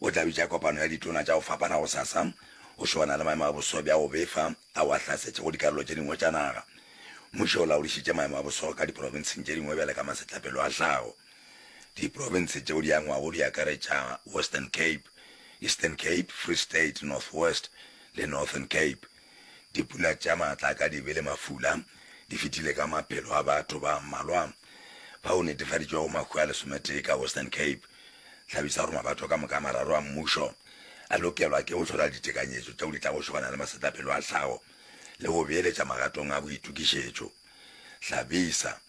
O tla bitša kopano ya ditona tša go fapana gosasa go šoana le maemo a boso bja go befa ao a hlasetšego dikarolo tše dingwe tša naga. Mmušo o laodišitše maemo a boso ka diprofenseng tše dingwe bjale ka masetlapelo a hlago. Diprofense tšeo di angwago di akaretša Western Cape, Eastern Cape, Free State, North West le Northern Cape. Dipula tša maatla ka dibe le mafula di fetile ka maphelo a batho ba mmalwa ba o netefaditšwego mahu a lesometee ka Western Cape. Hlabisa gore mabato ka moka a mararo a mmušo a lokelwa ke go hlola ditekanyetšo tšeo di tlago šobana le masetlapelo a tlhago le go beeletša magatong a boitokišetšo. Hlabisa.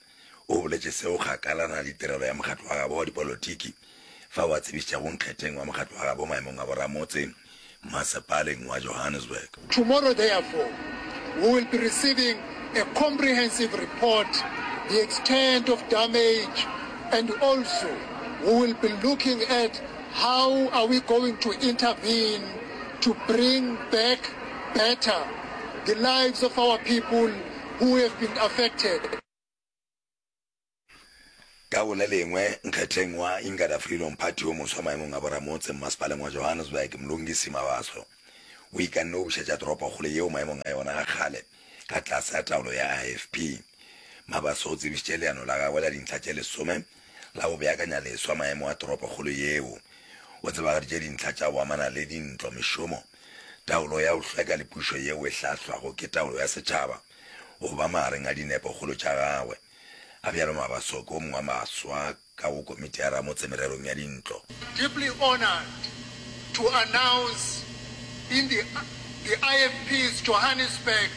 O boletše seo kgakala na le tirelo ya mokgatlo wa gabo wa dipolotiki fao a tsebišitšago nkgetheng wa mokgatlo wa gabo maemong a boramotse Masepaleng wa Johannesburg. Tomorrow therefore we will be receiving a comprehensive report the extent of damage and also we will be looking at how are we going to intervene to bring back better the lives of our people who have been affected. Ka go le lengwe, nkgetheng wa Ingada Freedom Party yo moswa maemong a boramotse mmasepaleng wa Johannesburg, Mlungisi Mabaso, o ikanne go bušetša toropokgolo yeo maemong a yona a kgale ka tlase a taolo ya IFP. Mabaso o tsebišitše leano la gagwe la dintlha tše lesome la go beakanya leswa maemo a toropokgolo yeo. O tsebagaditše dintlha tša go amana le dintlo, mešomo, Taolo ya go hlweka le pušo yeo e hlahlwago ke taolo ya setšhaba go ba magareng a dinepokgolo tša gagwe, a bjalo Mabasoko, o mongwe wa baswa ka go Komiti ya Ramotse Mererong ya Dintlo. Deeply honored to announce in the the IFP's Johannesburg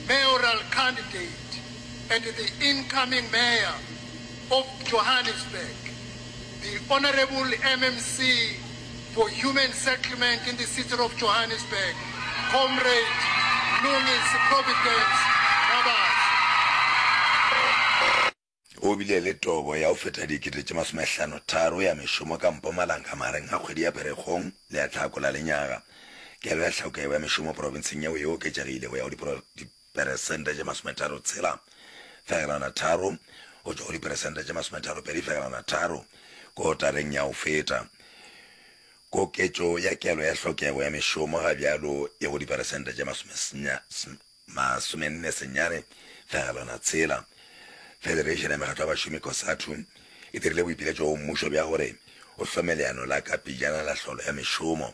mayoral candidate and the incoming mayor of Johannesburg, The Honourable MMC for Human Settlement in the City of Johannesburg, Comrade Mlungisi Providence Mmabatho. O bile le tobo ya go feta dikete tše masomehlano tharo ya mešomo ka mpo malanga magareng ga kgwedi ya Pherekgong le ya Hlakola lenyaga. Kelo ya tlhauka yeo ya mešomo profenseng yeo e oketšegile go ya go peresente tše masometharo tshela fegelwana tharo go tšwa go diperesente tše masometharo pedi fegelwana tharo kotareng ya go feta. Koketšo ya kelo ya hlokego ya mešomo ga bjalo e go diperesente tše masomenne senyane fegelwana tshela. Federation ya Mekgatlo ya Bašomi, Cosatu, e dirile boipiletšo go mmušo bja gore o hlome leano la ka pejana la tlholo ya mešomo.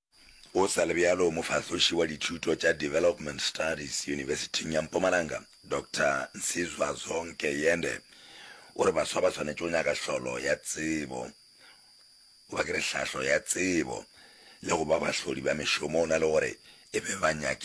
Go sa le bjalo, mofahloši wa dithuto tša Development Studies Yunibesithing ya Mpumalanga, Doctor Nsizwa Zonke Yende, o re baswa ba swanetše go nyaka hlolo ya tsebo, goba ke re hlahlo ya tsebo, le go ba bahlodi ba mešomo, go na le gore e be banyaki ba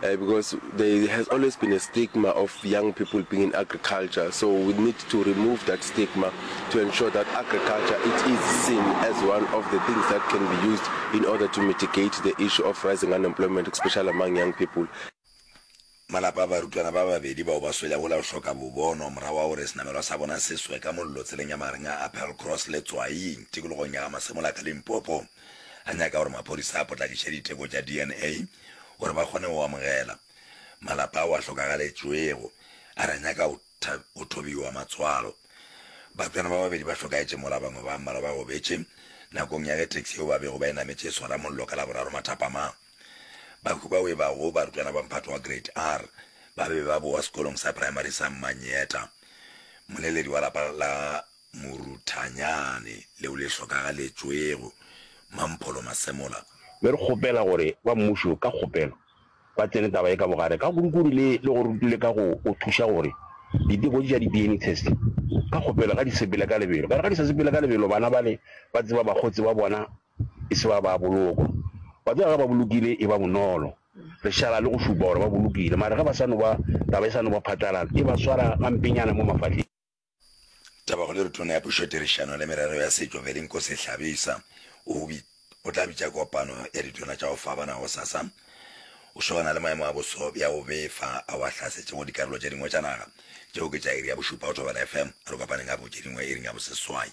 Because there has always been a stigma of young people being in agriculture, so we need to remove that stigma to ensure that agriculture it is seen as one of the things that can be used in order to mitigate the issue of rising unemployment, especially among young people. Malapa a barutwana ba babedi bao ba swelego la go hloka bobono morago ga gore senamelwa sa bona se swe ka mollo tseleng ya magareng ga Appelcross le Tswaing tikologong ya ga Masemola ka Limpopo. a nyaka gore maphodisa a potlakiše diteko tša DNA gore ba kgone go amogela malapa ao a hlokagaletšwego, a re a nyaka go thobiwa matswalo. Batswana ba babedi ba hlokaetše mola bangwe ba mmalwa ba gobetše nakong ya ge taxi yeo ba bego ba e nametše e swara mollo ka Laboraro mathapamang. Bahu bao e bago barutwana ba mphato wa Grade R ba be ba bowa sekolong sa praemari sa Mmanyeta. Moleledi wa lapa la Moruthanyane leo le hlokagaletšwego, Mampholo Masemola. Mme re kgopela gore ba mmušo ka kgopelo ba tsene taba ye ka bogare ka kurukuru le le gore rutule ka go go thuša gore diteko tše tša di-DNA test ka kgopelo ga di sepele ka lebelo. Ka re ga di sa sepele ka lebelo bana bale ba tseba bakgotsi ba bona e se ba ba bolokwa. Wa tseba ge ba bolokile e ba bonolo re šala le go šupa gore ba bolokile mare ge ba sa no ba taba e sa no ba phatlalala e ba swara gampenyana mo mafahleng. Tabagolo re Tona ya Pušo Tirišano le Merero ya Setšo Velinkosi Hlabisa o o tla bitša kopano ya ditona tša go fapana gosasa go šogana le maemo a boso bja go befa ao a hlasetšego dikarolo tše dingwe tša naga. Tšeo ke tša iri ya bošupa go Thobela FM. A re kopaneng gape go tše dingwe iring ya boseswai.